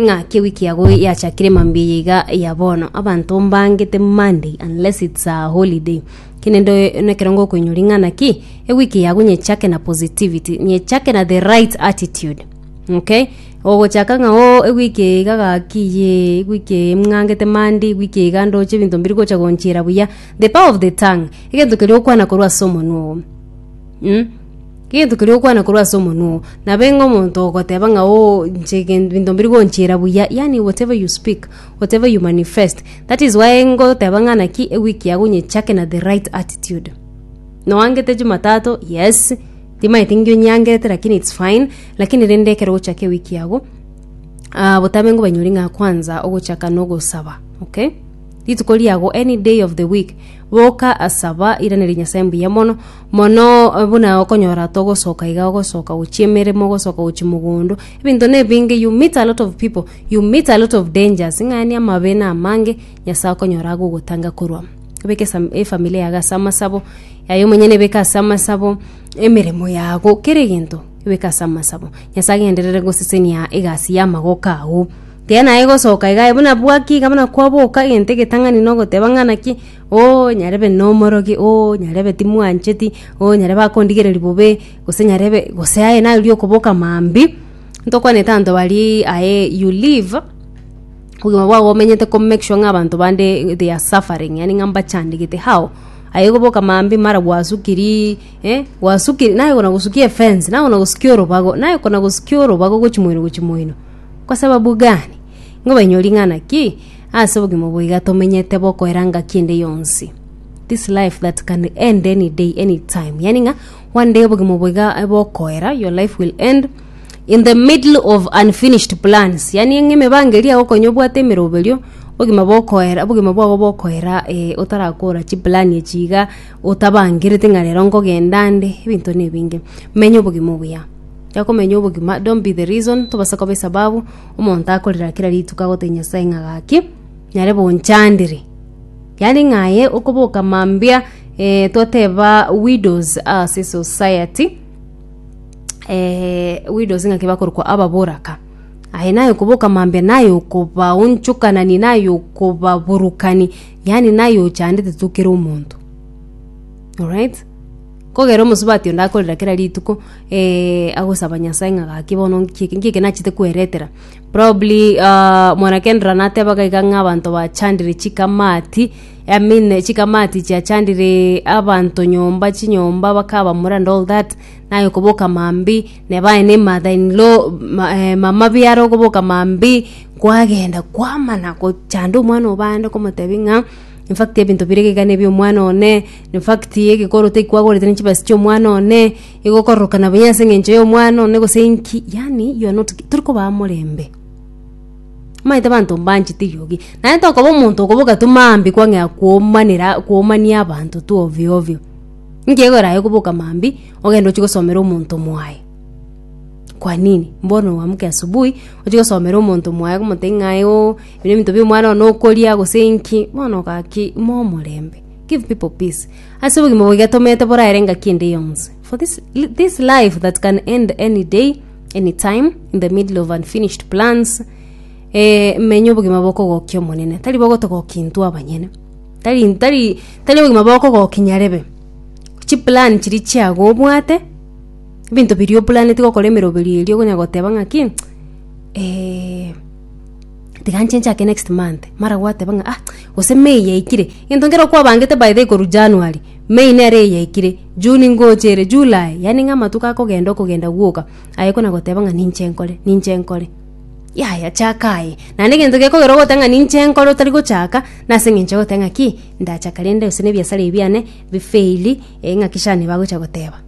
Ng'a kewi kiago yachakire mambia eye iga ya bono, abanto mbangete Monday unless it's a holiday. Kenende nekero ngokoinyora ing'ana ki, ewiki yago nyechake na positivity, nyechake na the right attitude. Okay? Ogochaka ng'a oo ewiki eye iga gaki yee, ewiki eye ng'angete Monday, ewiki eye iga ndoche ebinto mbiri gocha gonchira buya. The power of the tongue, egento keria okwana korwa ase omonwa oo. Mh? Gento keria okwana korwa ase omonwa oo, nabo enga omonto ogoteba ng'a oo inche gen- binto mbiri gonchira buya, yaani whatever you speak, whatever you manifest. That is why ngoteba ng'a naki ewiki yago onyechake na the right attitude. Noangete Jumatatu, yes, timaeti ngi onyangerete lakini it's fine, lakini rende ekero ogochaka ewiki yago, botambe ngobanyori ng'a kwanza ogochaka nogosaba, okay? Rituko riago, any day of the week, boka asaba iranerie Nyasae mbuya mono mono eh, buna okonyora togosoka iga ogosoka gochia emeremo ogosoka gochia mogondo ebinto nebinge you meet a lot of people you meet a lot of dangers ng'ani amabe na amange Nyasae okonyora agogotanga korwa ebeke esa- efamily yago ase amasabo yaye omonyene ebeke ase amasabo emeremo yago kera egento ebeke ase amasabo Nyasae agenderere gosesenia egasi y'amagoko ao Tiga naye gosoka iga aye buna bwaki iga buna kwaboka egento egetang'ani na ogoteba ng'a naki oo nyarebe na omorogi oo nyarebe timwancheti oo nyarebe akondigereria bobe gose nyarebe gose aye naye oria okoboka maambia ntokwanete abanto baria aye you live obogima bwabo omenyete ko make sure ng'a abanto bande they are suffering yaani ng'a mbachandegete how? Aye goboka maambia mara gwasukiri eh gwasukiri naye okona gosukia efence naye okona gosukia orobago naye okona gosukia orobago gochia moino gochia moino. Kwa sababu gani? Nigo bainyore ring'ana ki? Ase obogima boiga tomenyete bokoera ngaki ende yonsi. This life that can end any day, any time. Yani ng'a one day obogima boiga eh, bokoera, your life will end in the middle of unfinished plans. Yani ng'a emebangeri yao okonya obwate emeroberio, obogima bokoera, obogima bwabo bokoera eh, otarakora chiplan echi iga, otabangerete ng'a rero nkogenda nde, ebinto na ebinge. Menya obogima obuya. yakomenya obogima don't be the reason tobasa koba esababu omonto akorera kera rituko agotebi nyasae ng'a gaki nyare bonchandire yaani ng'aye okoboka mambia eh, twateba widows ase society eh, widows ng'aki bakorokwa ababoraka aye naye okoboka mambia naye okobaonchokanani naye okobaburukani yaani naye ochandete tokera omonto alright Kogera omosubati onde akorera kera rituko agosaba Nyasae ng'a gaki bono nki eke, nki eke nachete kweretera. Probably aah mwana Kendra natebaga iga ng'a abanto bachandire chikamati, I mean chikamati chiachandire abanto nyomba chinyomba bakabamura and all that, naye okoboka mambia neba aye na emother in law ma eh mama biara okoboka mambia, kwagenda kwamana gochanda omwana obo aande komotebia ng'a. In fact ebinto bire iga nebi omwana one, in fact egekoro teki kwagorete ne chibasi chia omwana one, igo okororokana buya ase eng'encho ya omwana one gose inki, yaani you are not gi tori kobaa morembe. Maete abanto mbanchete rirogi, naende tokoba omonto okoba ogatoma mambia kwang'ea komanera komania abanto tu ovyo ovyo. Inki ekegorae okoboka mambia ogende ochie gosomera omonto mwaye, kwa nini? Mbono oamuke asubuhi ochie gosomera omonto mwaye okomotebia ng'ai ooh. Ebi nebinto bi'omwana one okoria, gose inki, bono gaki ime omorembe. Give people peace. Ase obogima boiga tomete boraere engaki ende yonsi. For this, this life that can end any day, any time, in the middle of unfinished plans, eh, menya obogima bokogokia omonene. Tari bogotogokia intwe abanyene. Tari, tari, tari obogima bokogokia nyarebe. Chiplan chiria chiago obwate, ebinto biria oplaneti gokora emeroberi eria okonya goteba ng'aki, eh, tiga nchenche ake next month mara gwateba ng'a ah gose may yaikire egento nkere kwabangete by the way korwa january may nere eyaikire june ngocha ere july yaani ng'a amatuko akogenda okogenda gwoka aye kona goteba ng'a ninche nkore ninche nkore yaya chaka aye naende egento gekogera ogoteba ng'a ninche nkore otari gochaka nase eng'encho ya goteba ng'a ki ndachaka rende gose na ebiasara ebi biane bifeili eh ng'aki shani bagocha goteba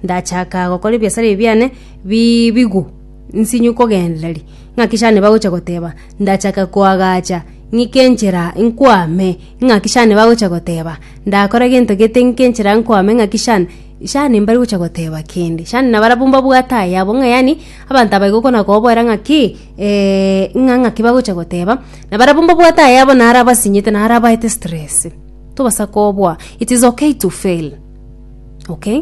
ndachaka gokora ebiasara ebi biane bi bigwe. nsinywe kogendereri, ng'aki shani bagocha goteba, Ndachake koagacha, ng'ike enchera nkwame, ng'aki shani bagocha goteba, Ndakore gento gete ng'ike enchera nkwame, ng'aki shani shani mbari gocha goteba kende. Shani nabarabwo mbabwate ayabo ng'a yaani abanto aba igo okona kobaboera ng'aki ng'a ng'aki bagocha goteba, nabarabwo mbabwate ayabo naro abasinyete naro abaete stress. Tobasa koboa, it is okay to fail, okay?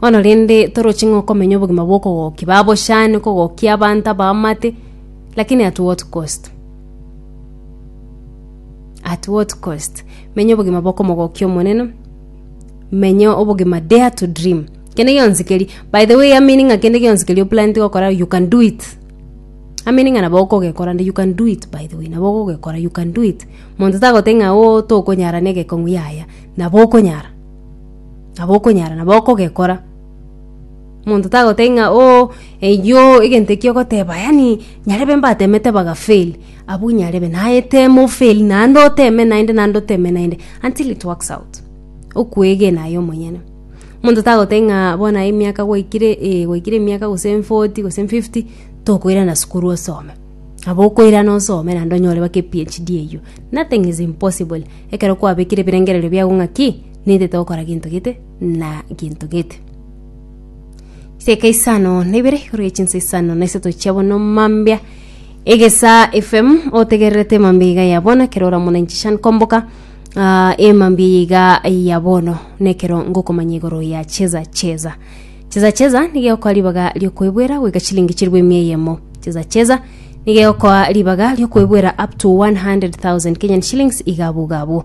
Bono rende toroche ng'a okomenya obogima bw'okogokia babochane, kogokia abanto abaamate, lakini at what cost? At what cost? Menya obogima bw'okomogokia Omonene, menya obogima dare to dream. Kende gionsi keria, by the way, amini ng'a kende gionsi keria oplanete gokora you can do it. Amini ng'a nabo okogekora nde you can do it by the way, nabo okogekora you can do it. Monto tagoteba ng'a oo tokonyara na egekong'u yaya, nabo okonyara. nabo okonyara nabo okogekora. Omonto tagotebia ng'a oo eyio egento ekio ogoteba yaani nyarebe mbatemete baga fail, abwo nyarebe naye teme o fail naende oteme naende naende oteme naende until it works out, okwegena aye omonyene. Omonto tagotebia ng'a bono aye emiaka gwaikire eh gwaikire emiaka gose emforty gose emfifty, tokoirana sukuru osome. Nabo okoirana osome naende onyore mpaka ephd eyio. Nothing is impossible, ekero kwabekire ebirengererio biago ng'a ki? Nintete gokora gento gete na gento gete. Chiseeka isano na ibere igoro ye chinsa isano na isato chia bono mambia egesa fm otegererete mambia iga ya bono ekero oramona inchishan komboka ah, emambia iga ya bono nekero ngokomanya igoro ya cheza cheza cheza cheza nigeokoa ribaga riokoebwera goika chilingi chiribu emia eyemo cheza cheza nigeokoa ribaga riokoebwera up to 100000 kenyan shillings iga abwo iga abwo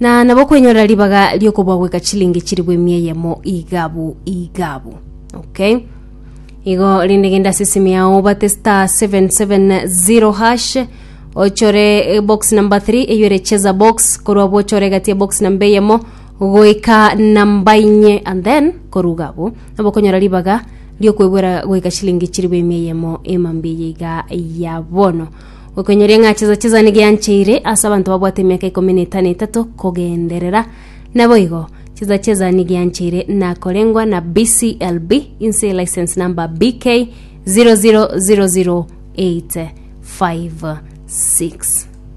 na nabo kwenyorera ribaga ri'okobua goika chilingi chiribu emia eyemo igabu igabu okay igo rinde genda ase esimi yao obate star 770 hash ochore eh, box number 3 eyore cheza box korwa abwo ochore egati ya box namba eyemo goika namba inye and then koruga abwo nabo okonyora ribaga riokwegwera goika chilingi chiribu emia eyemo emambia eyeiga ya bono Gokoinyoria ng'a chizo chisani giancheire ase abanto babwate emiaka ikomi na etano etato kogenderera. Naboigo, chizo chizani giancheire nakorengwa na BCLB inse license number BK 0000856.